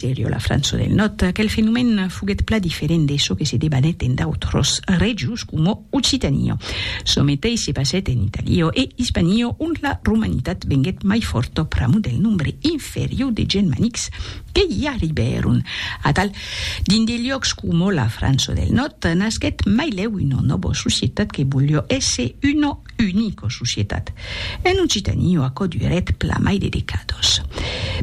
Serio la França del Nòrd, aquel fenomèn foguèt pla diferent de çò que se debanèt en d'autras regions coma Occitania. Çò meteis se passèt en Italia e Ispania, ont la romanitat venguèt mai fòrta pr'amor del nombre inferior de genmanics que i arribèron. Atal, dins de liòcs coma la França del Nòrd, nasquèt mai lèu una nòva societat que voliá èsser una Unic o societat. En Occitanie o aquò durèt pla mai de decados.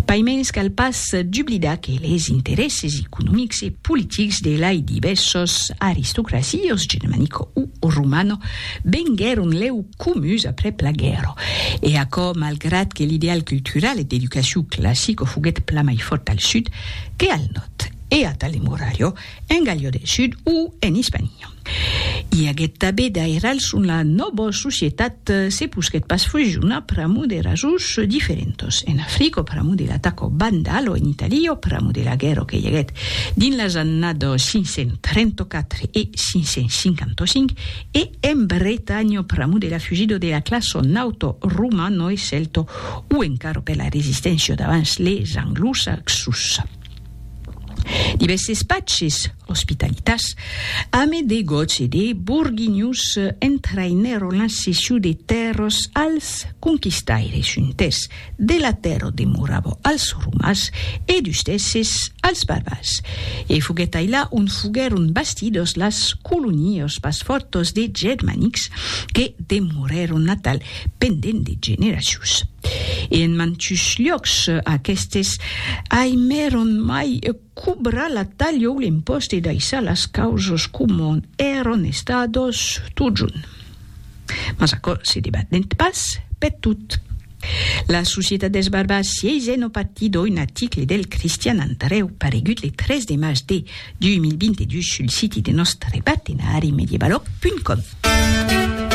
Paimens cal pas dublidar que les interèsses economics e politics de lai divèssos aristocracios germanico o romano venguèron lèu comuns aprèp la guèrra. E aquò malgrat que l'ideal cultural e d'educacion classico foguèt pla mai fòrt al sud que al nòrd, e a Tale Murallo, en Gallia del Sud o en Ispania. I aguet tabé d'airals on la nòba societat se posquet pas fusionar pr'amor de rasons diferentos. En Africa, o pr'amor de l'ataco vandal, o en Italia, o pr'amor de la guèrra que i aguet dins las annadas 534 e 555, e en Bretanha, o pr'amor de la fugida de la classa nauta romana e celta, o encara per la resisténcia davans les anglosaxos. Divèsses patges, ospitalitas, ame de gots e de borguinhos entraïnèron la cession de tèrras als conquistaires, un tès de la tèrra demorava als romans e dus tèses als barbars. E foguèt ailà ont foguèron bastidas las colonias pas fòrtas de germanics que demorèron natal pendent de generacions. E en mantus lhòcs aquestes aimèron mai cobrar la talha o l'impost e daissar las causas comon èron estados totjorn. Mas aquò se debatènt pas per tot. La societat dels barbars sièisent au partit oi un article del Cristian Andrèu paregut le 3 de març de 2022 sul siti de nòstre partenari medievalog.com.